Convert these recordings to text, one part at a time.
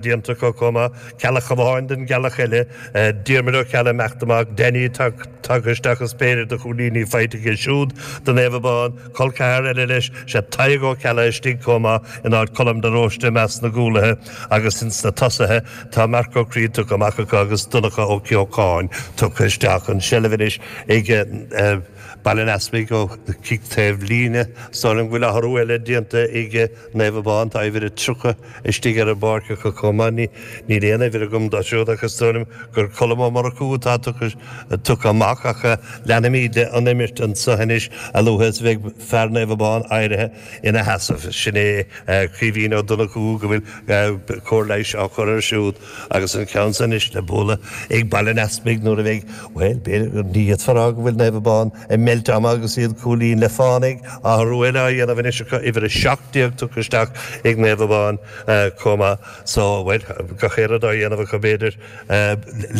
déanta acu chomh maith, Ceallach amháin don gCeallach eile, Diarmuid Ó Ceallaigh, ag imeacht amach, Denny, tagtha isteach is péire de chúilíní faighte aige siúd do Naomh Abán, col ceathar eile leis, sé Tadhg Ó Ceallaigh istigh chomh maith in áit Choilm de Róiste i measc na gcúlaithe agus ins na tosaithe tá Marc Ó Críod tugtha amach acu agus Donncha Ó Ceocháin tugtha isteach an seilbh anois ag Baile an Easpaig ó chic taobh líne, Samhlaím go bhfuil athrú eile déanta ag Naomh Abán, tá uimhir a 30 istigh ar an bpáirc acu chomh maith. Níl aon uimhir agam dó siúd ach is dóigh liom gur Colm Ó Murchú atá tugtha amach acu, leanfaimid leis an imirt anso anois a luaithe is a bheidh fear Naomh Abán éirithe ina sheasamh. Sin é Caoimhín Ó Donnchú go bhfuil cóir leighis á chur air siúd. Agus an ceann san anois le bualadh ag Baile an Easpaig nuair a bheidh, bhuel, b'fhéidir, ní fhéadfá a rá go bhfuil Naomh Abán ag meilt ama agus iad cúilín le fánaidh, athrú eile á dhéanamh anois acu, uimhir 17 tugtha isteach ag Naomh Abán chomh maith. So, bhuel, gach aon rud á dhéanamh acu, b'fhéidir,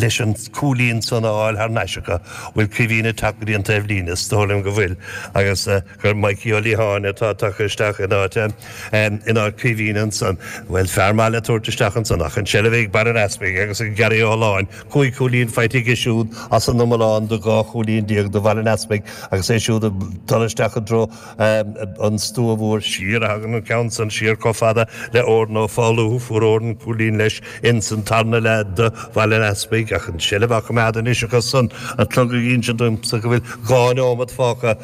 leis an cúilín san a fháil thar n-ais acu. Bhfuil Caoimhín ag teacht go dtí an taobhlíne? Is dóigh liom go bhfuil agus. gur Mikey Ó Liatháin atá tugtha isteach in áit é, in áit Caoimhín ansan. Bhuel, fear maith le tabhairt isteach ansan ach an seilbh ag Baile an Easpaig agus Gary Ó hOlláin, cúig chúilín faighte aige siúd as an iomlán de dhá chúilín déag do Bhaile an Easpaig agus é siúd ag dul isteach i dtreo an stua mhóir siar a thagann an ceann san siar chomh fada le Odhrán Ó Foghlú. Fuair Odhrán cúilín leis insan tarna leath do Bhaile an Easpaig ach an seilbh á coimeád anois acu ansan, an clog ag insint domsa go bhfuil dhá neomat fágtha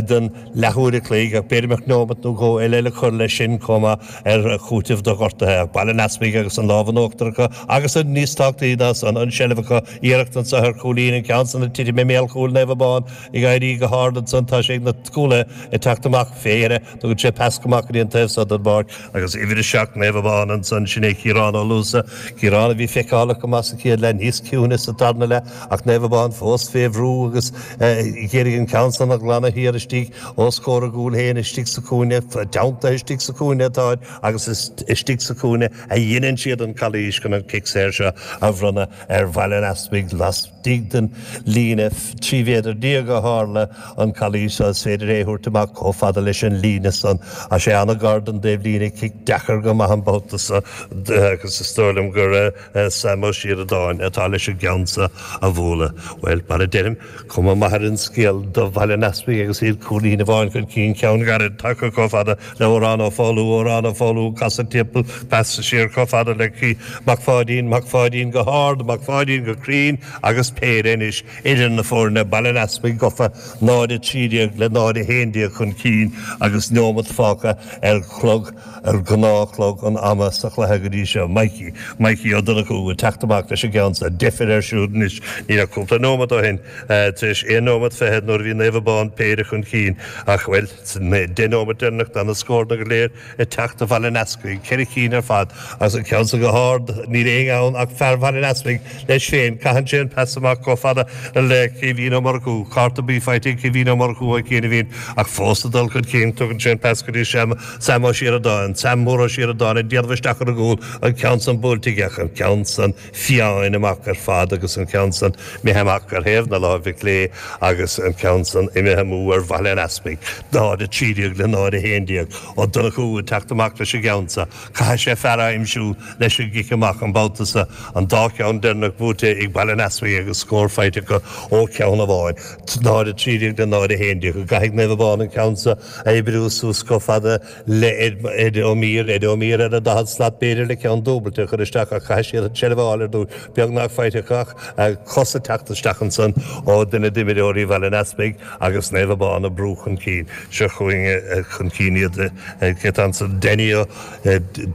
den leathuair a chloig, ach b'fhéidir go mbeadh neomat nó dhó eile le cur leis sin chomh maith ar chúiteamh do ghortaithe. Ach Baile an Easpaig agus an lámh in uachtar acu, agus an, níos tábhachtaí ná san, an tseilbh acu, iarracht anso ar chúilín, an ceann san ag titim i mbéal chúil Naomh Abán, ag éirí go hard ansan, tá sé ag na cúlaithe ag teacht amach fé dheireadh, tugann sé pas go maith go dtí an taobh so den bpáirc, agus uimhir a seacht Naomh Abán ansan, sin é Ciarán Ó Luasa, Ciarán a bhí feiceálach go maith sa chéad leath, níos ciúine sa tarna leath. Ach Naomh Abán fós fé bhrú agus a d'iarraidh an ceann san a ghlanadh thiar istigh os comhair a gcúil féin, istigh sa chúinne, teanntaithe istigh sa chúinne atáthar agus is istigh sa chúinne a dheineann siad an calaois chun an cic saor seo a bhronnadh ar Bhaile an Easpaig lastigh den líne trí mhéadar déag a tharla an calaois seo. Is féidir é a thabhairt amach comh fada leis an líne san. Tá sé an-ghar don dtaobh líne, cic deacair go maith an babhta so agus is dóigh liom gur. Sam Ó Sioradáin atá leis an gceann so a bhualadh. Bhuel, mar a deirim, cuma maith ar an scéal do Bhaile an Easpaig agus iad cúilín amháin chun cinn, ceann gairid tagtha chomh fada le Odhrán Ó Foghlú, Odhrán Ó Foghlú ag casadh timpeall, pas siar chomh fada le Ciarán Mac Pháidín, Mac Pháidín go hard, Mac Pháidín go cruinn agus péire anois idir na foirne, Baile an Easpaig gofa, 0, 13 le 0, 11 chun cinn agus neomat fágtha ar chlog. ar gnáth chlog an ama sa chluiche go dtí seo. Mikey, Mikey Ó Donnchú ag teacht amach leis an gceann-sa. Deifir air siúd anois. Ní raibh cúpla nóimeat ó shin, tar éis aon nóimeat fichead nuair a bhí Naomh Abán péire chun cinn ach, bhuel, sna deich nóimeat deireanach d'fhan na scóranna go léir ag teacht do Bhaile an Easpaig, ceithre cinn ar fad agus an ceann-sa go hard. Níl éinne ann ach fear Bhaile an Easpaig, leis féin. Caitheann sé an pas amach chomh fada le Caoimhín Ó Murchú. Cárta buí faighte ag Caoimhín Ó Murchú ó chianaibhín ach fós ag dul chun cinn. Tugann sé an pas go dtí Seam. Sam Ó Síoradáin, Sam Mór Ó Síoradáin, ag déanamh isteach ar an gcúl, an ceann san buailte isteach, an ceann san fiáin amach ar fad agus an ceann san imithe amach ar thaobh na láimhe clé agus an ceann san imithe amú ar Bhaile an Easpaig, náid 3 déag le náid 1 déag. Ó Donnchú, ag teacht amach leis an gceann sa, caithfidh sé fear a aimsiú leis an gcic amach an babhta sa, an dá cheann deireanach buaite ag Baile an Easpaig agus scór faighte acu ó cheann amháin, náid 3 déag le náid 1 déag. Go gcaithfidh Naomh Abán an ceann sa, Oibriú suas chomh fada le Ed Ó Mír, Ed Ó Mír ar a daichead slat b'fhéidir le ceann dúbailte a chur isteach ach caithfidh siad an tseilbh a fháil ar dtús, beagnach faighte acu ach cos ag teacht isteach ansan ó duine d'imreoirí Bhaile an Easpaig agus Naomh Abán ag brú chun cinn. Seo chugainn chun cinn iad, cé atá ansan Danny Ó,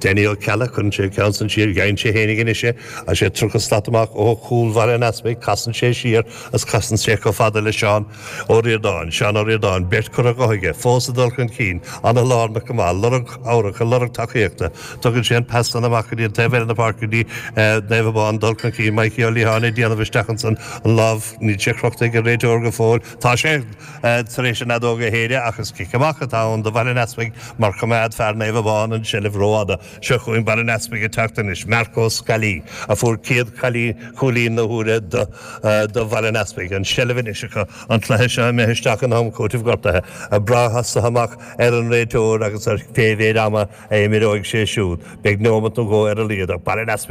Danny Ó Ceallaigh, cuireann sé an ceann san siar, gheibheann sé fhéinig anois é agus sé tríocha slat amach ó chúl Bhaile an Easpaig, casann sé siar agus casann sé chomh fada le Seán, Ó Ríordáin, Seán Ó Ríordáin, beirt curtha de aige fós ag dul chun cinn, an-lárnach go maith, lorg cabhrach, ag lorg tacaíochta. Tugann sé an pas san amach go dtí an taobh eile na páirce dtí Naomh Abán dul chun cinn, Maidhcí Ó Liatháin ag déanamh isteach ansan an lámh, níl sé crochta ag an réiteoir go fóill, tá sé tar éis an fheadóg a shéideadh ach is cic amach atá ann do Bhaile an Easpaig mar choimeád fear Naomh Abán an tseilbh rófhada. Seo chugainn Baile an Easpaig ag teacht anois, Marc Ó Scolaí, a fuair céad cailín cúilín na huaire do Bhaile an Easpaig. An tseilbh anois acu an cluiche seo imithe isteach in am cúitimh gortaithe. Ag brath as seo amach ar an réiteoir agus ar cé mhéid ama a imreoidh sé siúd, beidh neomat nó dhó ar a laghad ag Baile an Easpaig.